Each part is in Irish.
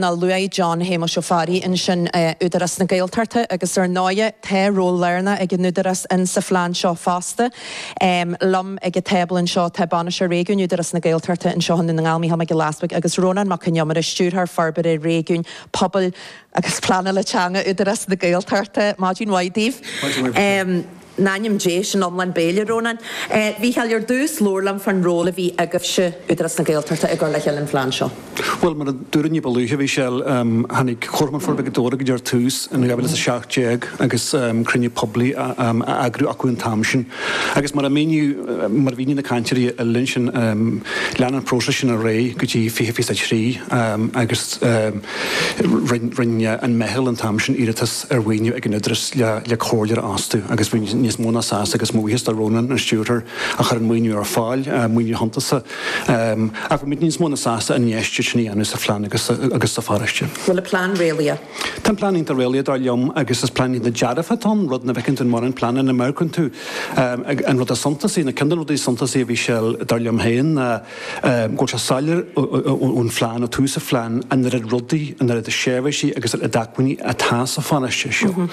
luaigh John Shéamuis Ó Fearraigh ansin Údarás na Gaeltachta agus ar ndóighe tá ról lárnach ag an Údarás insa phlean seo fosta. Liom ag an tábla anseo tá Bainisteoir Réigiúin Údarás na Gaeltachta anseo i nDún na nGall, Micheál Mac Giolla Easbuig agus Rónán Mac Con Iomaire, Stiúrthóir Forbartha Réigiúin, Pobail agus Pleanála Teanga Údarás na Gaeltachta. Maidin mhaith daoibh. in ainm Dé, sin lán béil, a Rónáin. A Mhichíl, ar dtús labhair liom fán ról a bhí agaibhse, Údarás na Gaeltachta, i gcur le chéile an phlean seo. Bhuel, mar a dúradh ní ba luaithe, Michelle, em tháinig Comharchumann Forbartha Ghaoth Dobhair go dtí ar dtús in 2017 agus em cruinniú poiblí a em a eagrú acu an t-am sin agus mar a míníodh, mar a mhínigh na cainteoirí uilig ansin em lean an próiseas sin ar aghaidh go dtí fiche fiche a trí em agus em rinne an meitheal an t-am sin iarratas ar mhaoiniú ag an Údarás le comhairleoir a fhostú agus bhí muid níos mó ná sásta agus buíochas do Rónán, an stiúrthóir, a chuir an maoiniú ar fáil, maoiniú suntasach. Ach bhí muid níos mó ná sásta an infheistíocht sin a dhéanamh sa phlean agus sa pharóiste. Bhfuil an plean réalaíoch? Tá an plean iontach réalaíoch dar liom agus is plean iontach dearfa atá ann, rud nach bhfeiceann tú i mórán pleananna. Má amharcann tú an rud is suntasaí, nó ceann de na rudaí is suntasaí a bhí ann dar liom féin ná, go bhfuil sé soiléir ón phlean, ó tús an phlean, an oiread rudaí, an oiread seirbhísí agus an oiread acmhainní atá sa pharóiste seo.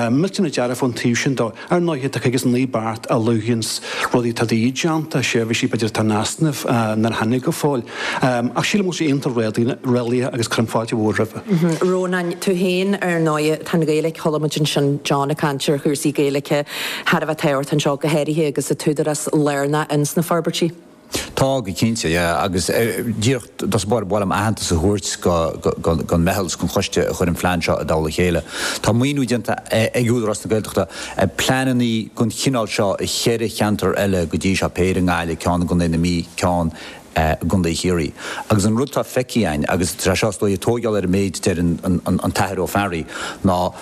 Millteanach dearfach ón taobh sin de. Ar ndóighe, tá cúig agus naoi beart a luanns rudaí atá de dhíth déanta, seirbhísí b'fhéidir atá in easnamh nár tháinig go fóill. Ach sílim go bhfuil sé iontach réalaíoch agus cuirim fáilte mhór roimhe. Rónáin, tú fhéin ar ndóighe, tá an Ghaeilge, chuala muid ansin John ag caint ar chúrsaí Gaeilge, thar a bheith tábhachtach anseo, go háirithe agus an tÚdarás lárnach ins na forbairtí. Tá go cinnte, yeah, agus díreach ar dtús ba mhaith liom aitheantas a thabhairt gon meitheal is gon choiste a chuir an plean seo i dtoll a chéile. Tá maoiniú déanta ag Údarás na Gaeltachta ar pleanannaí gon chineál seo i cheithre cheantar eile go dtí seo, péire i nGaillimh, ceann i gContae na Mí, ceann i gContae Chiarraí. Agus an rud tá feicthe againn, agus tá sé seo is dóigh ag tóigeáil ar an méid a dúirt an tAthair Ó Fearraigh, ná,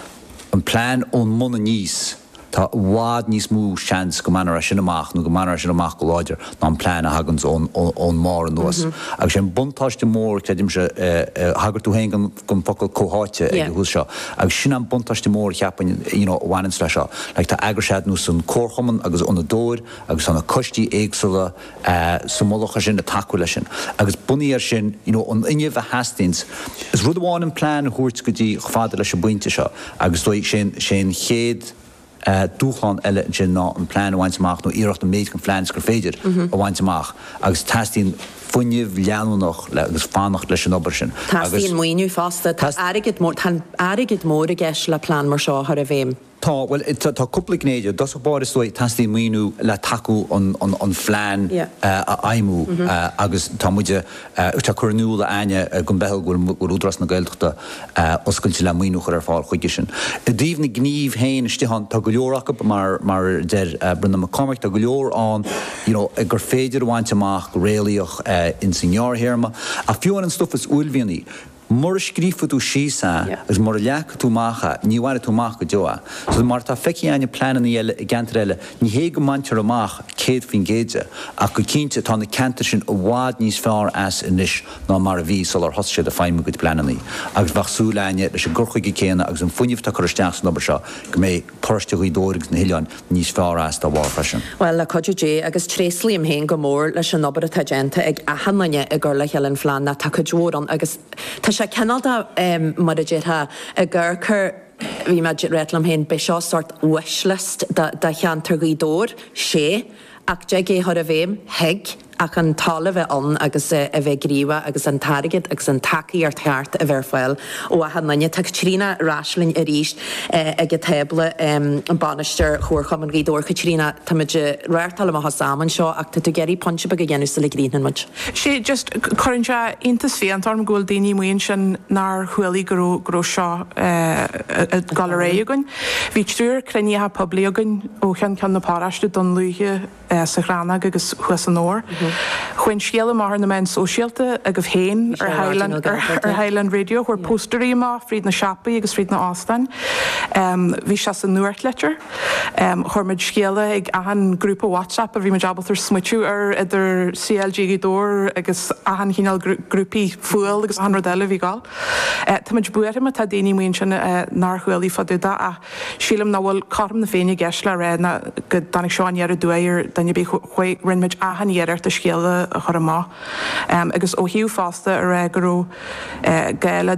an plean ón mbun aníos, tá i bhfad níos mó seans go mbainfear é sin amach nó go mbainfear é sin amach go láidir ná an plean a thaganns ón mbarr anuas. Agus sé an buntáiste mór, creidimse, thagair tú féin gon focal 'comhtháite' ag an tús seo, agus sin an buntáiste mór a cheapfainn you know a bhaineanns le seo, like tá eagraíochtaí ar nós an Chomharchumann agus Ionad Dhobhair agus tá na coistí éagsúla, sa mullach ar sin, ag tacú leis sin agus bunaithe ar sin you know an fuinneamh a theastaíonns. Is rud amháin an plean a thabhairt go dtí chomh fada leis an bpointe seo agus is dóigh sé'n sé'n chéad eh dúshlán eile ansin ná an plean a bhaint amach nó iarracht an méid den phlean is gur féidir a bhaint amach agus teastaíonn fuinneamh leanúnach le agus fanacht leis an obair sin agus. Teastaíonn maoiniú fosta. Tá airgead mór tá airgead mór i gceist le plean mar seo a chur i bhfeidhm. Tá, bhuel, tá cúpla gné de. I dtosach báire, is dóigh, teastaíonn maoiniú le tacú an phlean a fheidhmiú agus tá muid ag cur in iúl a Áine go mbeidh, go bhfuil Údarás na Gaeltachta oscailte le maoiniú a chur ar fáil chuige sin. I dtaobh na gnímh féin istigh ann, tá go leor acu, mar a deir Brendan Mac Cormaic, tá go leor ann you know gur féidir a bhaint amach go réalaíoch ins an ngearrthéarma ach fiú ar an stuff is uaillmhianaí, Mura scríobhfaidh tú síos é agus mura leagfaidh tú amach é, ní bhainfidh tú amach go deo é. Agus mar atá feicthe againn i pleanannaí eile i gceantair eile, ní hé go mbaintear amach 100% de, ach go cinnte tá na ceantair sin i bhfad níos fearr as anois ná mar a bhí sular thosaigh siad ag feidhmiú a gcuid pleanannaí. Agus bheadh súil againne, leis an gcur chuige céanna agus an fuinneamh atá curtha isteach san obair seo, go mbeidh paróiste Ghaoth Dobhair agus na hoileáin níos fearr as dá bharr freisin. Bhuel, le cuidiú Dé, agus tréaslaím féin go mór leis an obair atá déanta ag achan duine i gcur le chéile an phlean ná tá cuid mhór ann agus tá sé cineál de, mar a déarfá, i gcarcair, bhí mé ag rá liom féin, beidh seo sórt wishlist do cheantar Ghaoth Dobhair, sé. Ach dtig é a chur i bhfeidhm, thig, ach an toil a bheith ann agus é a bheith gníomhach agus an t-airgead agus an tacaíocht cheart a bheith ar fáil ó achan duine. Tá Caitríona ar ais linn arís ag an tábla, bainisteoir Chomharchumann Ghaoth Dobhair. Caitríona, táimid ag reáchtáil amach as am anseo ach tá tú ag iarraidh pointe beag a dhéanamh sula gcríochnaíonn muid. Sé, just, cuireann sé iontas fiánta orm go bhfuil daoine amuigh ansin nár chualaigh go raibh, go raibh seo ag dul ar aghaidh againn. Bhí triúr cruinnithe poiblí againn. ó cheann ceann na paróiste Dún Lúiche, sa Chrannóg agus thuas i nDobhar. Chuaigh an scéala amach ar na meáin sóisialta agaibh féin ar Highland Radio cuireadh póstaerí amach fríd na siopaí agus fríd na hóstáin. Bhí sé sa nuachtlitir. Chuir muid scéala ag achan grúpa WhatsApp a bhí muid ábalta smaoiteamh ar idir CLG Ghaoth Dobhair agus achan chineál grúpaí fuáil agus achan rud eile a bhí ag gabháil. Táimid buartha má tá daoine amuigh ansin nár chualaigh fá dtaobh de ach. Sílim nach bhfuil cothrom na féinne i gceist le rá ná go dtáinig seo aniar aduaidh ar dhuine ar bith. Rinne muid achan iarracht an scéala a chur amach agus ó thaobh fosta a rá go raibh gá le